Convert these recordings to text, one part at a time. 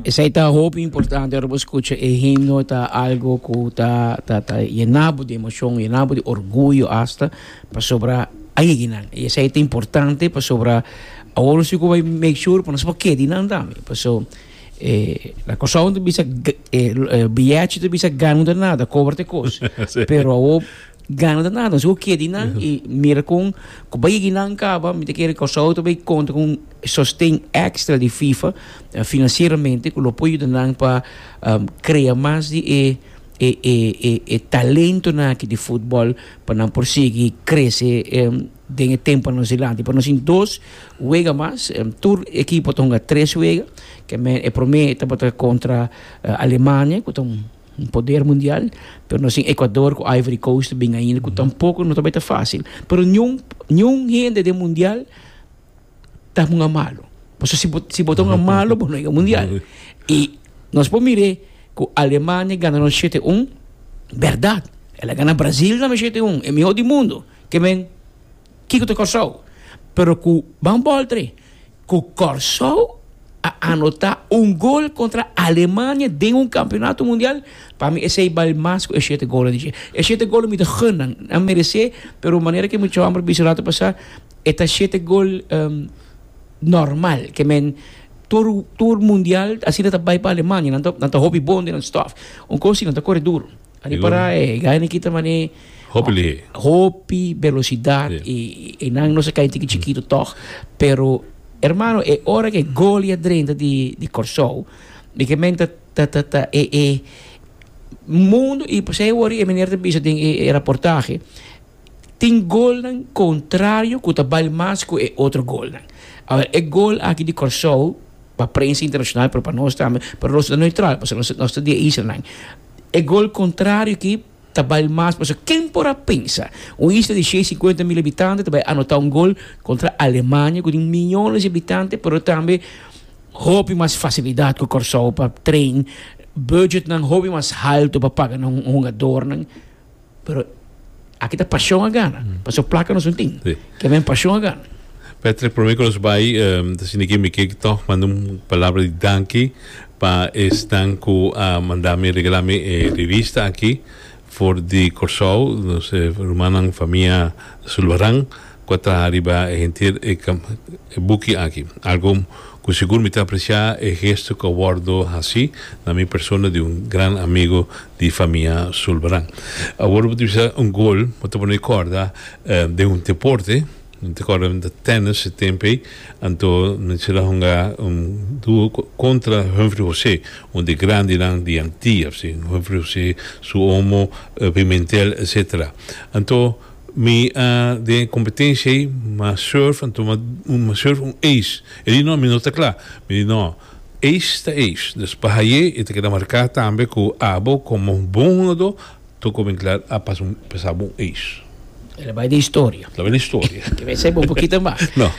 Esei ta hopi importante ora bo skucha e himno, ta algo ku ta ta ta yena bo di emoshon, yena bo di orguyo asta, pasobra a yegi nan. I esei ta importante pasobra awor nos tin ku bai make sure ku nos por keda di nan tambe. Paso e na Kòrsou nan ta bisa e biyèchi ta bisa gana un ta nada, kobra ta e kos. Pero awor gana ta nada, nos tin ku keda di nan i mira kon ku bai yegi nan kaba, mi ta kere Kòrsou ta bai konta ku E sosten extra di FIFA financieramente cu lo por yuda nan pa crea mas di e e talentonan aki di futbol pa nan por sigui crece den e temponan nos dilanti. Por nos tin dos wega mas, tur ekipo ta hunga tres wega, e prome tabata contra Alemania cu ta un poder mundial, pero nos tin Ecuador cu Ivory Coast ta bini ainda cu tampoco no tabata facil. Pero niun niun hende den mundial. ta hunga malo. Paso si bo, si bo ta hunga malo, bo no llega mundial. Y nos por mire cu Alemania gana nos 7-1, verdad. El a gana Brazil tambe 7-1, e mihor di mundo. Ke men, kiko ta Corsou? Pero cu Van Boltre, cu Corsou a anota un gol contra Alemania den un campeonato mundial, pa mi esey bal mas cu e shete golnan di dje. E shete golnan mi ta gunan, nan merece, pero manera cu e muchacho a bisa rato pasa, E ta shete gol normal ke men tur tur mundial asina ta bai pa Alemania nan ta nan ta hopi bon den nan stof un kos si nan ta kore duru ari para e gaynan kita mane Hopi lihé. hopi belosidat Ya. i i nan no sa kai tiki chikitu tog pero hermano e ora ke gol i a drenta di di Kòrsou mi ke men ta ta ta ta e e mundo i pasei wòrdu e meneer ta bisa den e e raportahe tin golnan contrario cu ta bal mas cu e otro golnan. Awer, e gol aki di Corsou, pa prensa internacional pero pa nos tambe, pero nos ta neutral pasobra nos ta nos ta di e isla nan, e gol contrario aki ta bal mas pasobra ken por a pensa un isla di shei cincuenta mil habitante ta bay anota un gol contra Alemania cu tin miyones di habitante pero tambe hopi mas facilidad cu Corsou pa train, budgetnan hopi mas halto pa paga nos hungadornan. Pero aki ta pasion a gana. Paso placa nos no tin. Sí. Ke men pasion a gana. Patrick, prome ku nos bai, um, ta sinigi mi ke tòg manda un palabra di danki pa esnan ku a manda mi, regalá mi e revista aki for di Kòrsou, nos rumannan famia Zulbarán. cu a traha riba e henter e buki aki. Algo cu sigur mi ta aprecia e gesto cu a wordo haci na mi persona di un gran amigo di famia Zulbarán. Awor bo ta bisa un gol bo ta pone corda den un deporte, mi ta corda den tennis e tempo ey, anto Michel a hunga un duo contra Humphrey José, un di e grandenan di Antia, Humphrey José, su omo, Pimentel etc. Anto Mi a den e competencia ey ma surf a tuma ma surf un ace e di no mi no ta cla mi di no ace ta ace dus pa haye e ta keda marca tambe cu abo como bon hungador toco bin cla a pasa un pesaba un ace. Ela bay den historia. La bay den historia. Te mester bay un pokito mas. No.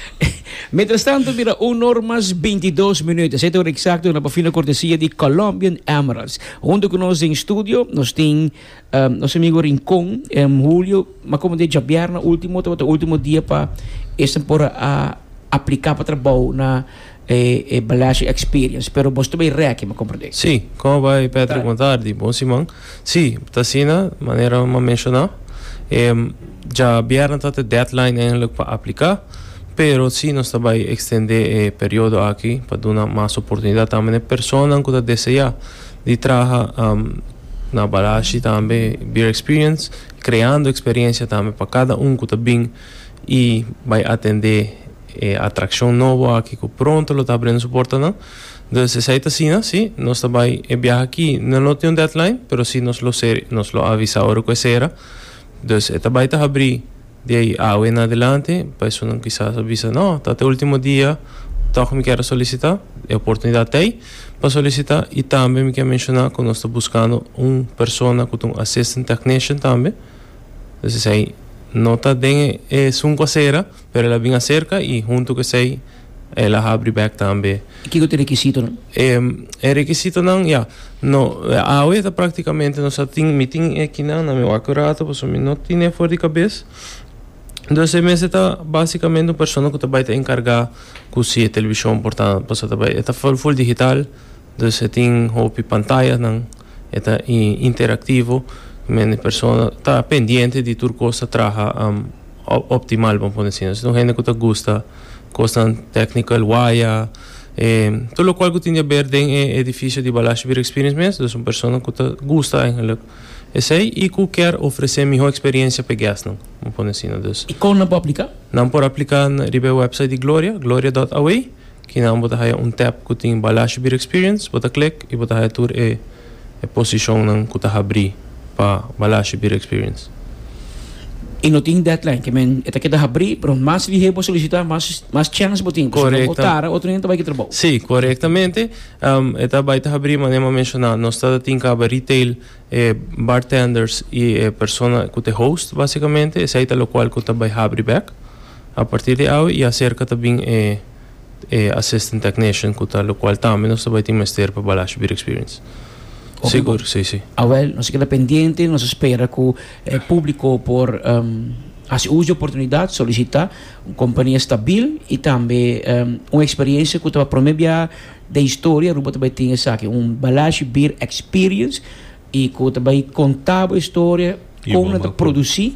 Mientras tanto bira un or mas bintidos minuto sete ora exacto na pa fina cortesia di Colombian Emeralds. Hunto cu nos den studio nos tin. Nos amigo Rincon, Julio, ma como de djabierna ultimo tabata ultimo dia pa esnan por a aplica pa trabou na e Balashi Experience. Pero boso ta bay reki, me comprende. Sí, como bay Patrick Bon tardi, bon siman. Sí, ta asina manera bo a menciona. Djabierna tabata e deadline eigenlic pa aplica, pero sí nos ta bay extende e periodo aki pa duna mas oportunidad tambe na e personanan cu ta desea di traha. Na Balashi tambe Beer Experience kreando eksperiencia tambe pa kada un ku ta bin i bai atende e atrakshon nobo aki ku pronto lo ta abriendo su portanan. Dus esei ta asina si, nos ta bai e biaha aki no lo tin un deadline pero si nos lo ser nos lo avisa ora ku e sera. Dus e ta bai ta habri. Di ei awe na adelante personanan kisas a bisa, No, ta te ultimo dia tok mi kier a solisita, e oportunidat ta ei pa solisita i tambe mi kier menshona ku nos ta buskando un persona ku ta un assistant technician tambe, entonces esei no ta den e esun ku a sera pero el a bin aserka i huntu ku esei. el a habri bek tambe. I kiko ta e rekisitonan? E rekisitonan, ya, no, awe ta praktikamente nos a tin, mi tin e kinan na mi wak rato pasobra mi no tin e for di kabes, entonces e mester ta básikamente un persona ku ta bai ta enkargá ku si e televishon por ta, pasobra ta bai, e ta full full digital, entonces tin hopi pantayasnan. E ta interaktivo, men e persona ta pendiente di tur kos ta traha optimal, bo a pone asina. Esei ta un hende ku ta gusta kosnan tèknikal, waya, tur lokual ku tin di aber den e edifisio di Balashi Beer Experience mes. Dus un persona ku ta gusta eigenlik esei i ku kier ofresé mihó eksperiensia p'e gèstnan, bo a pone asina. I kon nan por apliká? Nan por apliká riba e wèpsait di Gloria, gloria dòt away. Kinan bo ta haya un tab cu tin Balash Beer Experience? Bo ta click y bo ta haya tur e e posicionnan cu ta habri pa Balash Beer Experience. Y no tin deadline, que men e ta keda habri, pero mas lihe bo solicita, mas mas chance bo tin, pasobra bo tara otro hende ta bay ki trabao. Si, corectamente. E ta bay ta habri manera mi a menciona, nos ta tin caba retail. E bartenders i e persona ku ta e host basikamente esei ta lokual ku ta bai habri bek. A partir di awe i aserka ta bin e e assistant technician ku ta lokual tambe nos ta bai tin mester pa Balash Beer Experience. Oke bo. Sigur, si, si. Awel, nos a keda pendiente, nos a spera ku e publiko por hasi us di e oportunidat, solisitá un kompania stabil i tambe un eksperiensia ku ta ba promé biaha Den historia Aruba ta bai tin esaki, un balashi beer experience y cu ta bai conta bo historia con nan ta produci.